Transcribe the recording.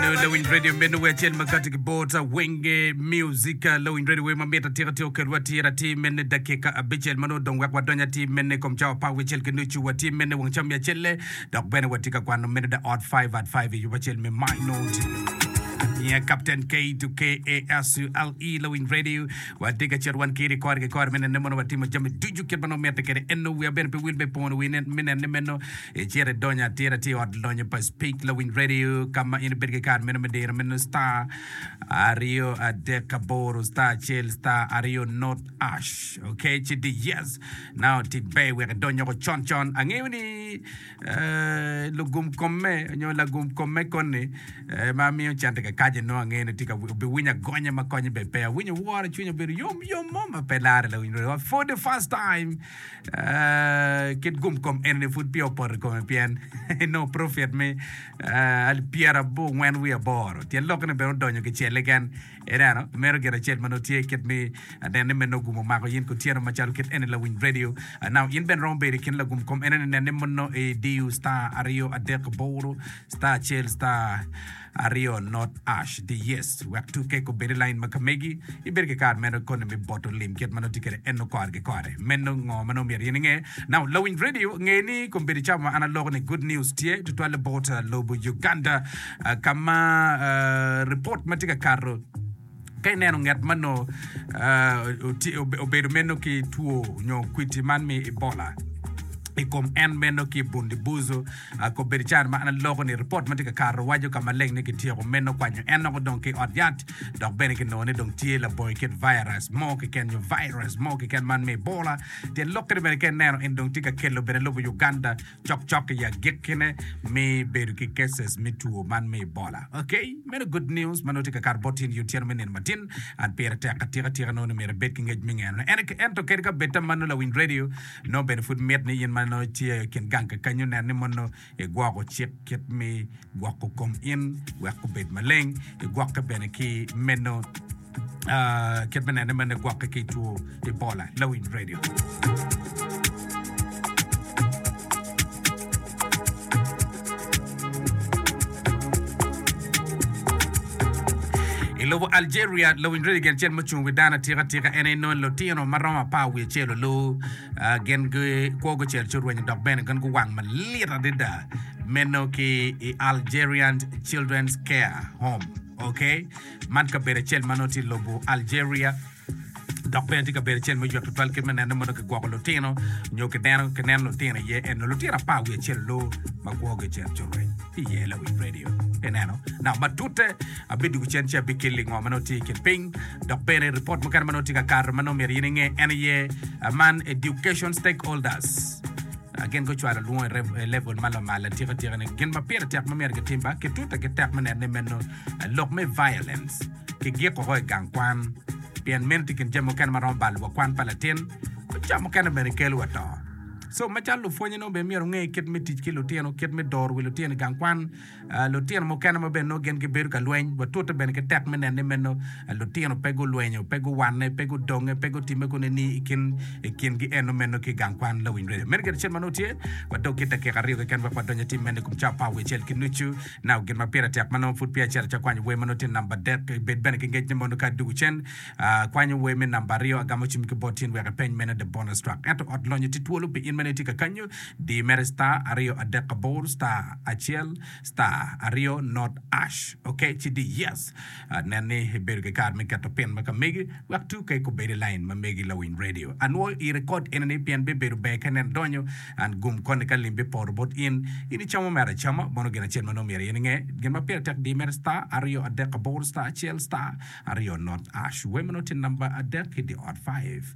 Nongo lawiny radio meno wer acel ma kati ki bota wenge musica lawiny radio wer ma mit atika tye oketo wa tira ti mene dakika abicel ma nongo dong wek wadony ati mene i kom cawa par wicel ki nucu wa ti mene wang ca miya celle dok bene wa ti ka kwano mene da ot 5 at 5 i yubo acel me my note Yeah, Captain K to K A S U L E Lawin Radio. Wati ka chet wan kiri kor ki kor menen ne mono watimo jami ducu kit mano mete kede enno wia bene pe wil me pono winen minen ne menno Icit idony atira ki i Ot Lonyo pa Speak Lawiny Radio ka ma in ibedo ki kat meno me diro meno star aryo adek aboro star acel star aryo not ash ok ci di yes now otik be wek idony oko con con angeyo ni eh, lugum komme nyo lagum komme koni eh, ma miyo cente kakaje no angeyo ni tika obiwinyo agonya ma konye be pe awinyo woro cwiny obedo yom yom mo ma pe lare Lawiny Radio for the first time kit gumkom enini pud peya opoto i kome pien enongo profit me alip pyerabongwen wiye aboro. Tyen lokke ni bene odonyo kicelle gen. Ineno, meno gin acel ma nongo tye kit mi anen ni meno gumo mako yin kutyeno macalo kit eni lawiny radio. Now, in bene romo bedo i kin lagumkom enini nen ni mono idiyo star aryo adek aboro star acel star Aryo not ash the yes wek tuke kubed i lain ma ka megi ibedo ki kare meno koni me boto lim kit ma nongo tye kede eno kore ki kore. Meno ngo ma nongo myero in inge? Now lawiny radio nge ni kombedo cawa ma an aloko ni good news tye tutwal bot lobo Uganda ka ma report ma tye ka kato Ka ineno ngat ma nongo obedo meno ki two nyo kwiti man mi Ebola i kom en meno ki Bundi Buzo, kobbe di can ma an aloko ni ripot ma tye ka kato waco ka maleng ni kityeko meno kwanyo en nongo dong ki ot yat dok bene kinongo ni dong tye labongi kit virus mo keken nyo virus mo keken man mi Ebola. Tyen lok kene bene ka ineno en dong tye ka kelo bene lobo Uganda Cokcok i agikkine mi bedo ki cases me two man me Ebola. Ok, meno good news ma nongo tye ka kato bot in i otyeno me nino matin. And pire tek atika tika nongo ni myero ibed ki ngec me ngeno ne. Ene, ento kadi ka bed ta mano lawiny radio, nongo bene pud mit ni in ma nongo itye i kin gang kakanyo nen ni mono igwoko cik kit me gwoko kom in wek obed maleng, igwokke bene ki meno. Kit me nene mene gwokke ki two Ebola. Lawiny Radio. I lobo Algeria, lawinj redi gen cen mucung wi dano atika tika en aye nongo lutino ma romo apar wiye cel olu ah, gen gikwo gucel ci orwenyo dok bene gen guwang malit adada meno ki i Algerian Children's Care Home. Okay? Man kabedo acel ma nongo tye i lobo Algeria dok bene tye kabedo acel me yot tutwal kit me nenne ma nongo kigwoko lutino nyo kineno kineno lutino iye en nongo lutino apar wiye acel loo ma kwogi ocito cwiny ki iye lawi redio ineno naka matute abidwogo cen ci abikeli lingo ma nongo tye i kin piny dok bene ripot mukene ma nongo tye ka kato ma nongo myero in inge en aye ah, man education stakeholders Ah, gin gucwalo lwongo i rev- i level ma lamal atika tika ni gin ma pire tek ma myero gitim ba kitute ki tek me nenne meno lok me violens ki gik oko i gang kwan, pien meno tye kin jami mukene ma romo balo wa kwan pa latin, ma ca mukene bene kelo wa to. So macalo lupwonye nongo bene myero onge kit me tic ki lutino, kit me doro wi lutino i gang kwan, lutino mukene ma bene nongo gin gibedo ka lweny, watute bene ki tek me neno ni meno lutino pe gulwenyo, pe guwanne, pe gudonge, pe gutimme kunu ni i kin i kingi eno meno ki gang kwan. Lawiny Radio. Meno gire cen ma nongo tye, wadog ki dakika aryo keken wek wadony atim meno i kom cawa pa awicel ki nucu. Nau gin ma pire tek ma nongo pud peya acito atye akwanyo wer ma nongo tye namba adek. Bed bene ki ngec ni mondo ka adwogo cen, akwanyo wer me namba aryo, agamo cwiny ki bot in wek ipeny mene the bonus track. Ento ot lonyo tye twolo pi in ma nongo itye ka kanyo, di mere star aryo adek aboro star acel star aryo not ash ok ci di yes. Nen ni ibedo ki kare me keto pin ma ka megi wek tuk kek obed i lain ma megi lawiny redio. Anwoyo i rekod enini pien bibedo ber ka nen idonyo. An gum koni ka lim bipoto bot in. In icamo mere acama, mono gin acel ma nongo myero in inge. Gin ma pire tek diyo mere star aryo adek aboro star acel star aryo not ash. Wemo nongo tye namba adek ki di ot five.